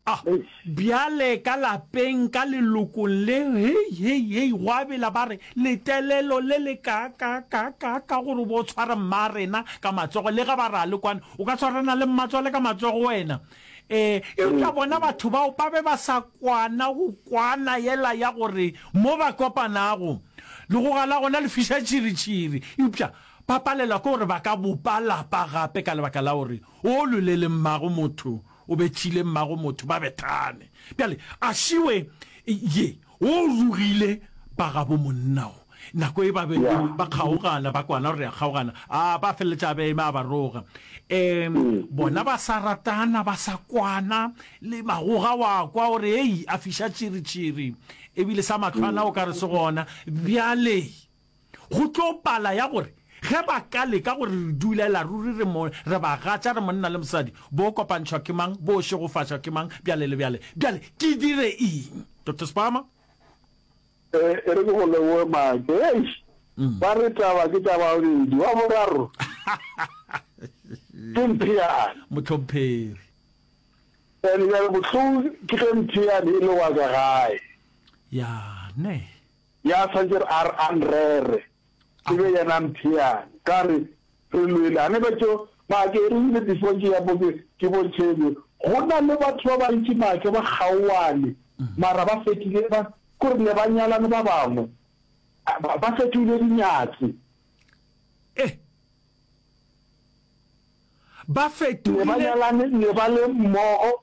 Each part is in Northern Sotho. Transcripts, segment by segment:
A Bjale ka lapeng, ka lelokong le, hei, hei, hei, gwa bela ba re, Letelelo le le kaakaakaakaaka gore o bo o tshware mmaarena ka matsogo, le ge ba re a le kwane. O ka tshwarana le mmatswale ka matsogo wena? Ee. Eupša bona batho bao ba be ba sa kwana go kwana yela ya gore mo ba kopanago, legoga la gona le fiša tšhiritšhiri. Eupša ba palelwa ke gore ba ka bopa lapa gape ka lebaka la gore o lolele mmago motho O bethile mmago motho, ba bethane. Bjale, a šiwe ye, wo o rugile ba gabo monna wo. Nako e ba be ba kgaogana, ba kwana gore ya kgaogana, a ba feleletša a be eme a ba roga. E, bona ba sa ratana, ba sa kwana, le magoga wa kwa gore, hei, a fiša tširi-tširi, ebile sa matlwana o ka re se gona. Bjale, Go tlo pala ya gore ge ba ka leka gore re dulela ruri re mo, re bagatša, re monna le mosadi, bo kopantšhwa ke mang, bo šegofatšwa ke mang, bjale le bjale. Bjale ke dire eng, Doctor Spama? E, e re ke go leboge Maake. Eish! Ba re taba ke tša babedi, wa boraro ke Mpheane. Mohlomphegi. And bjale bohloko ke ge Mpheane e le wa ka gae. Ya, neh. Ya swantše re a re a nrere, e be yena a mpheang. Ka re, Re lwele. A ne ba tšo, mara ke erile before ke ya mo ke, ke bontšhe e be. Go na le batho ba bantši maake ba kgaoane, mara ba fetile ba, ke gore ne ba nyalane ba bangwe, ba, ba fetohile dinyatsi. Eh! Ba Ne ba fetohile. nyalane, ne ba le mmogo,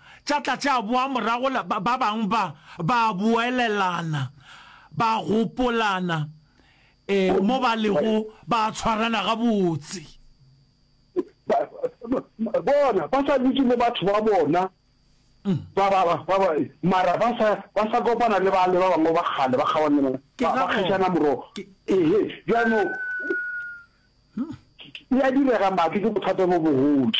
tša tla tša boa morago la ba bang ba ba boelelana, ba gopolana, e, mo ba lego ba tshwarana gabotse. Ba, bona, ba sa dutše le batho ba bona, ba, ba, ba, ba, ba, mara ba sa, ba sa kopana le bale ba bangwe ba kgale, ba kgaogana le bona, Ke ba, ga ba gona. kgetšana morogo. Ke- Ehe, bjanong, e a direga maki ke bothata bo bogodi.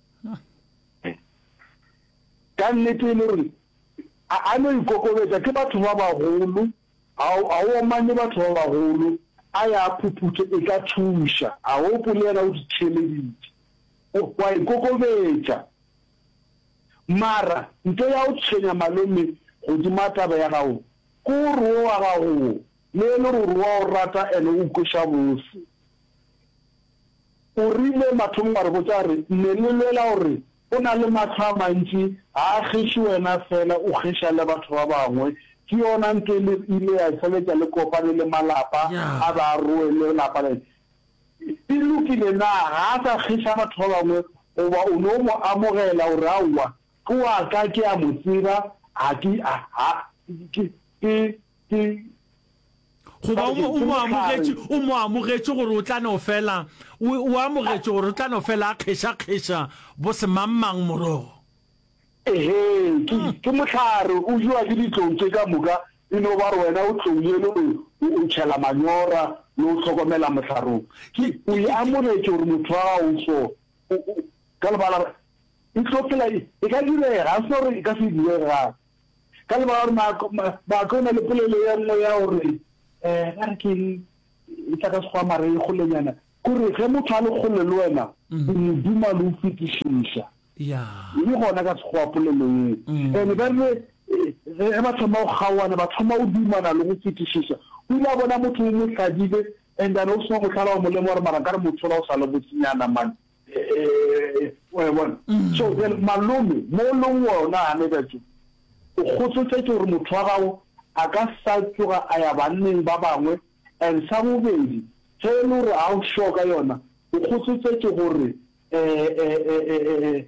ka nnete e le gore a, a no ikokobetša ke batho ba bagolo, a, a o omanye batho ba bagolo, a ya a phuphuthe, e ka thuša. A o gopole yena o di theeleditše, o, o a ikokobetša. Mara nto ya go tshwenya malome godima taba ya gago ke gore wo wa gago wo, le e le gore wa o rata ene o kweša bose, O rile mathomong wa re botša a re, Ne le lwela gore o na le mahlo a mantši, ga a kgeše wena feela, o kgeša le batho ba bangwe. Ke yona ntho e ile ya feletša le kopane le malapa a be a roe le lapa le. E lokile na ga a sa kgeša batho ba bangwe goba o no mo amogela gore aowa ke wa ka ke a mo tseba ga ke ke ke. ke goba o mo- o mo amogetše o mo amogetše gore o tla no fela o o amogetše gore o tla no fela a kgešakgeša bo semangmang morogo ehe ke ke mohlare o jewa ke ditlong tše ka moka e no ba re wena o tlong yeno o o- o tšhela manyora le o hlokomela mohlarong ke o e amogetše gore motho wa gago o so o- o- ka lebala e tlo phela e e ka direga ga se gore e ka se direga Ka lebaka gore maako, ma, maako e na le polelo ye nngwe ya gore, eh, a re ke eng, e tla ka Sekgowa mara e golenyana, ke gore ge motho a le kgole le wena, o mo duma le o fetišiša. Ya. E le gona ka Sekgowa polelo ye. And ba rile, ge ba thoma go kgaoana, ba thoma go dumana le go fetišiša. O ile a bona motho o mo hlabile, and a no seno go hlaba, wa mo lemoga gore mara nkare motho ola o sa le botsinyana man. Eh, wa bona mm. so bjale malome mo leng wona gane katso o kgotsotetse gore motho wa gago a ka sa tsoga a ya banneng ba bangwe and sa bobedi ge e le gore ga o sure ka yona o kgotsotetse gore eh, eh,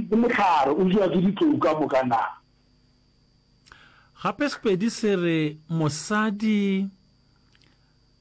ke motlhare o jewa ke ditlou ka moka na gape sepedi se re mosadi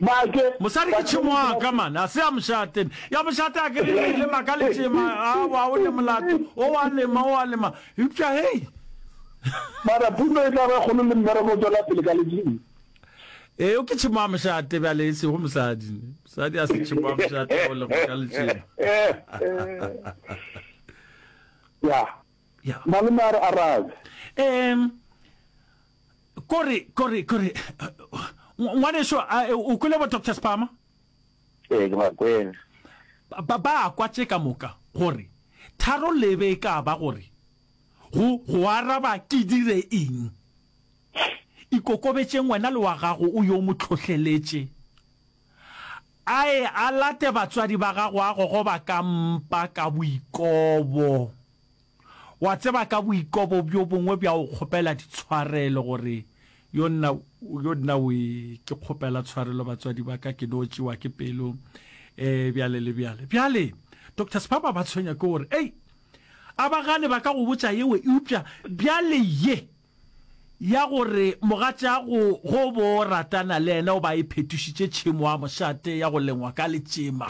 Make. Mosadi ke tšhemo wa ka man, a se ya mošate. Ya mošate a ke re e lema ka letšema, a wa o le molato, o wa lema, o wa lema. Eupša hei. Mara puno e tla ba kgolo le mmereko o tswela pele ka ledimo. Eo ke tšhemo wa mošate bjale e sego mosadi. Mosadi a se tšhemo wa mošate o lema ka letšema. Ya. Ya. Malome a re arabe. Um. Kore, kore, kore, ngwaneso, a o kwele bo Doctor Spama? Ee, ke ba kwele. Ba, ba a kwa tše ka moka, gore, tharo lebe e ka ba gore, go, go araba ke dire eng. Ikokobetšeng wena le wa gago o yo mo tlhohleletše. A ye a late batswadi ba gago a gogoba ka mpa ka boikobo. Wa tseba ka boikobo bjo bongwe bja go kgopela ditshwarelo gore, Yo nna, yo nna we, ke kgopela tshwarelo batswadi ba ka, ke no tšewa ke pelo, e, bjale le bjale. Bjale, Doctor Sphaba ba tshwenywa ke gore, Ei, a ba gane ba ka go botša yewe, eupša bjale ye, ya gore mogatšago go bo ratana le yena o ba e phetošitše tšhemo wa mošate ya go lengwa ka letšema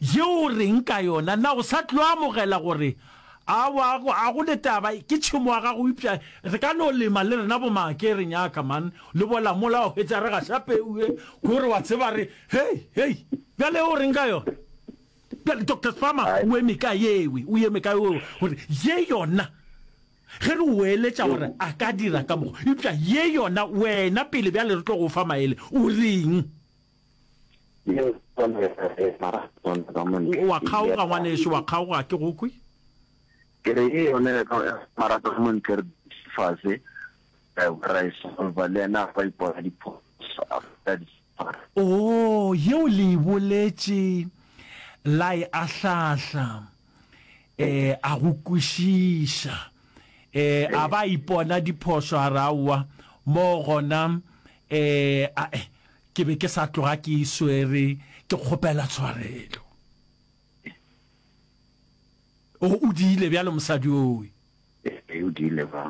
yeo o reng ka yona na o sa tlo amogela gore a wa a go le taba ke tšhemo wa gago upša re ka no lema le rena bo make re nyaka man le bola mola wa hwetša re ga sa peue gore wa tseba re hey hey bjale o reng ka yona bjale doctor spama o eme ka yewe o eme ka yewe gore ye yona Ge re o eletša gore a ka dira ka mo, eupša ye yona wena pele bjale re tlo go fa maele, o reng? O a kgaoga, ngwanešu, wa kgaoga, ga ke go kwe. Ke re, Ye yona ya ka, mara ka mo ntle re dutše fase. Ewa, ra e solva. Le yena a kwa a ipona diphošo, a feta diswara. Oo, yeo le e boletše, la e ahlahla. E, a go kwešiša. E, a ba a ipona diphošo, a re, Aowa, moo gona, e, a, e, ke be ke sa tloga ke e swere, ke kgopela tshwarelo. O, o diile bjalo, mosadi owe. E, o diile ba.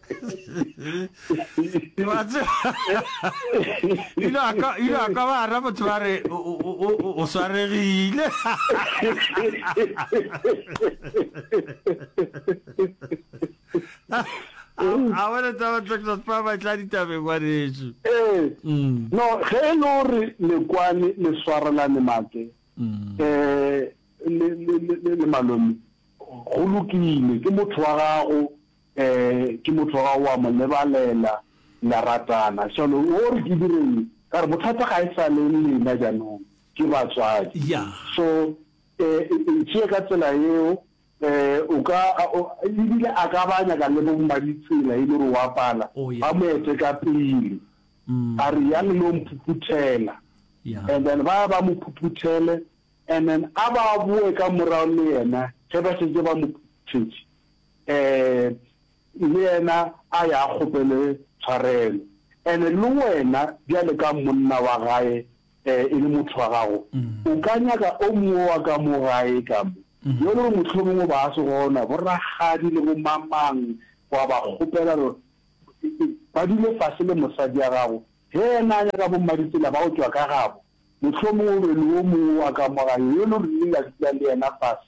ile a ka ile a ka ba ra motho ba re o- o- o- o- o- o swaregile a wena taba texas pa ba tla ditabeng wa reetso ee Mm, no ge e le gore lekwane le swarelane maake mm, eh le le le- le- le malome go lokile ke motho wa gago Ke motho ga o a mo lebalela, le a ratana. Shano, o re ke direng? Ka re, Bothata ga e sa le lena jaanong, ke batswadi. So, e tšee ka tsela yeo. O ka, e bile a ka ba a nyaka le bo Mmaditsela, e le gore o a pala, ba mo ete ka pele. A re, Yang le yo mphuphuthela. And then ba ya ba mo phuphuthele, and then a ba boe ka morago le yena ge ba šetše ba mo phuphuthetse. Ee, le yena a ya a kgopele tshwarelo. And-e le wena bjale ka monna wa gae, ee, e le motho wa gago, o ka nyaka o mongwe wa ka mo gae ka mo, yo e le gore mohlomongwe ba a se gona, bo rakgadi le bo mamang, wa ba kgopela gore ba dule fase le mosadi ya gago. Ge yena a nyaka bo mmaditsela ba go tšwa ka gabo, mohlomongwe o be le o mongwe wa ka mo gae yo e le gore le ile la dula le yena fase,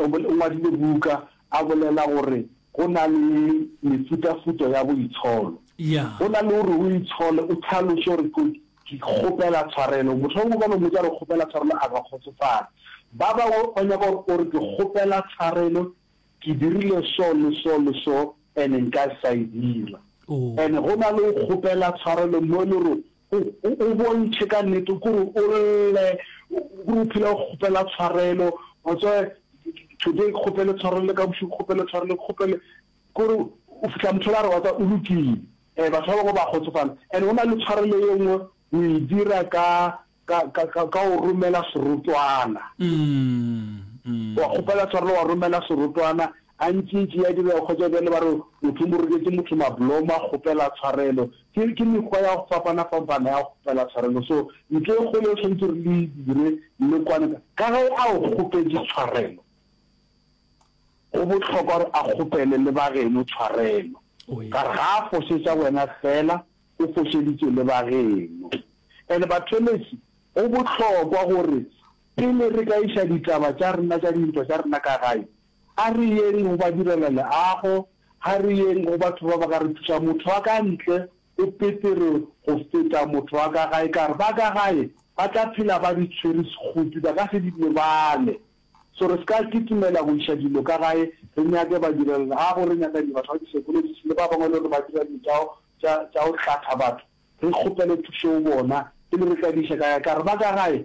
O ngwadile buka a bolela gore go na le mefutafuta ya boitsholo. Go na le gore o itshole, o tlhaloše gore ke kgopela tshwarelo. Motho yo mongwe ka no mmotsa gore kgopela tshwarelo a ka kgotsofala. Ba bangwe ba nyaka gore o re ke kgopela tshwarelo, ke dirile so le so le so and-e nka sa e dira. And-e go na le go kgopela tshwarelo mo e le gore O, o, o bontšhe ka nnete gore o lle, gore o phela o kgopela tshwarelo. Wa tseba, today ke kgopele tshwarelo, le ka bošego ke kgopele tshwarelo, ke kgopele, kore o fihla motho o la re, wa tseba, o lokile. E, batho ba bangwe ba kgotsofala. And go na le tshwarelo ye nngwe o e dira ka, ka, ka, ka, ka go romela serotwana. Wa kgopela tshwarelo, wa romela serotwana. A ntšintši ya direga kgotša bjale ba re motho o mo roketše motho mablomo a kgopela tshwarelo. Ke, ke mekgwa ya go fapana-fampana ya go kgopela tshwarelo. So, ntho e kgolo e swanetše re le e dire le kwane, ka ge a o kgopetše tshwarelo, go bohlokwa gore a kgopele le ba geno tshwarelo, ka re ga a fošetša wena fela, o fošeditše le ba geno. And bathelesi, go bohlokwa gore pele re ka iša ditaba tša rena tša dintwa tša rena ka gae, A re yeng go ba direla leago, ga re yeng go batho ba ba ka re thušang. Motho wa ka ntle o petere go feta motho wa ka gae, ka re ba ka gae ba tla phela ba di tshwere sekgopi, ba ka se di lebale. So re se ka kitimela go iša dilo ka gae, re nyake badirelaleago, re nyakanye batho ba di-psychologist le ba bangwe e le gore ba dira dilo tša go, tša, tša go hlatha batho, re kgopele thušo go bona pele re ka di iša ka gae, ka re ba ka gae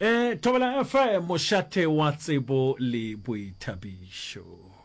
Ee, Thobela FM, mošate wa tsebo le boithabišo.